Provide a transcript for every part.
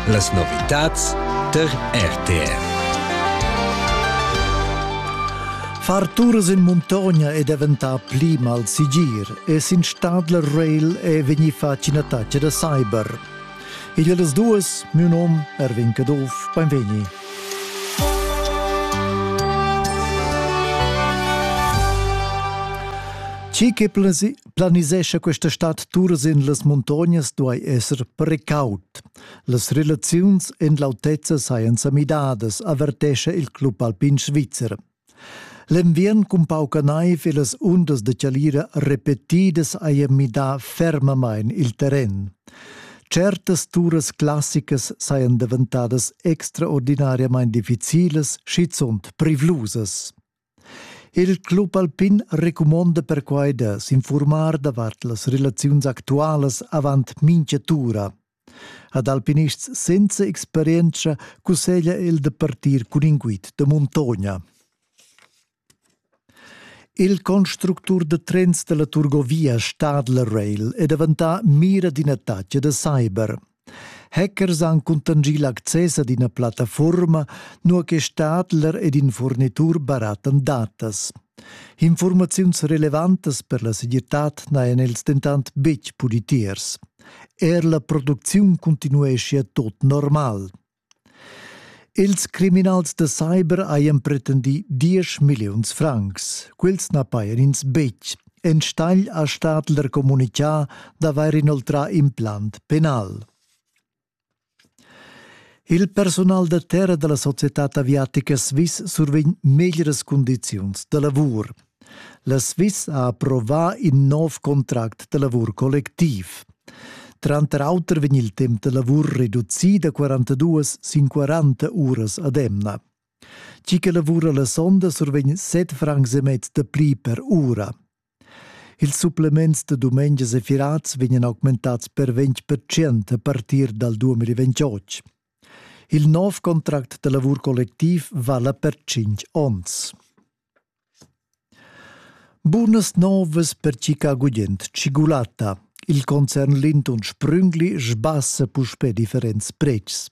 Las novitads tar RTR. Far turas in muntogna è daventà pli malsegir e sin Stadler Rail è vegnì fatg ina taccia da cyber. Igl das duas, mio nom Erwin Caduff, benvegni. Ci che plasi Planisescha questa stad turas en las muntognas duai esser precaut. Las relaziuns en l'autezza sajan sa midadas, avertescha il club alpin svizzer. L'enviern cun pauca naiv e las undas de chalira repetidas haja midà fermamain il terren. Certas turas classicas sajan daventadas extraordinariamain difficilas, schizunt privlusas. Il club alpin recumonda perquai da s'infurmar davart las relaziuns actualas avant mincha tura. Ad alpinists senza experienza cusseglia el da partir cun in guid da muntogna. Il constructur da trens da la Turgovia Stadler Rail è daventà mira d'in attacc da cyber. Hackers han cuntanschì l'access ad ina plattafuorma, nua che Stadler ed in furnitur barattan datas. Informaziuns relevantas per la segirtad n'hajan els dentant betg pudi tiers. Er la producziun cuntinueschia tot normal. Ils criminals da cyber hajan pretendì diesch milliuns francs. Quels na pajan ins betg. Enstagl ha Stadler communitgà d'avair inoltrà implant penal. Il personal da terra da la societad aviatica Swiss survegn meglieras cundiziuns da lavur. La Sviss ha approvà in nov contract da lavur collectiv. Tranter auter vegn il temp da lavur reducì da 42 sin 40 uras ad emna. Tgi che lavura la sonda survegn 7 francs e mezz da pli per ura. Ils supplements da dumengias e firats vegnan augmentads per 20% a partir dal 2028. Il nov contract da lavur collectiv vala per 5 onns. Bunas novas per Chica Gugent, tschigulatta. Il concern Lindon Sprüngli sbassa puspè differents pretschs.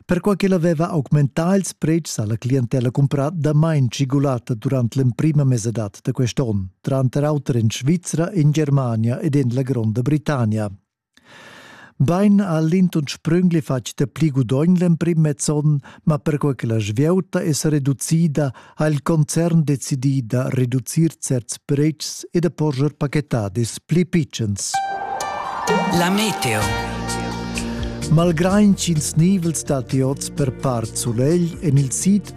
Perquai ch'el aveva augmentà ils pretschs ha la clientella cumprà damain tschigulatta durant l'emprima mesadad da quest onn, tranter auter en Svizra, en Germania ed en la Gronda Britannia. Bain ha l'intern sprüngli fatg dapli gudogn l'emprim mezzon, ma perquai che la svieuta es reducida ha il concern decidì da reducir certs predschs e da porscher pachetadis pli pitschens. La meteo. Malgrain ch'ins nivels datti oz per part sulegl, en il sid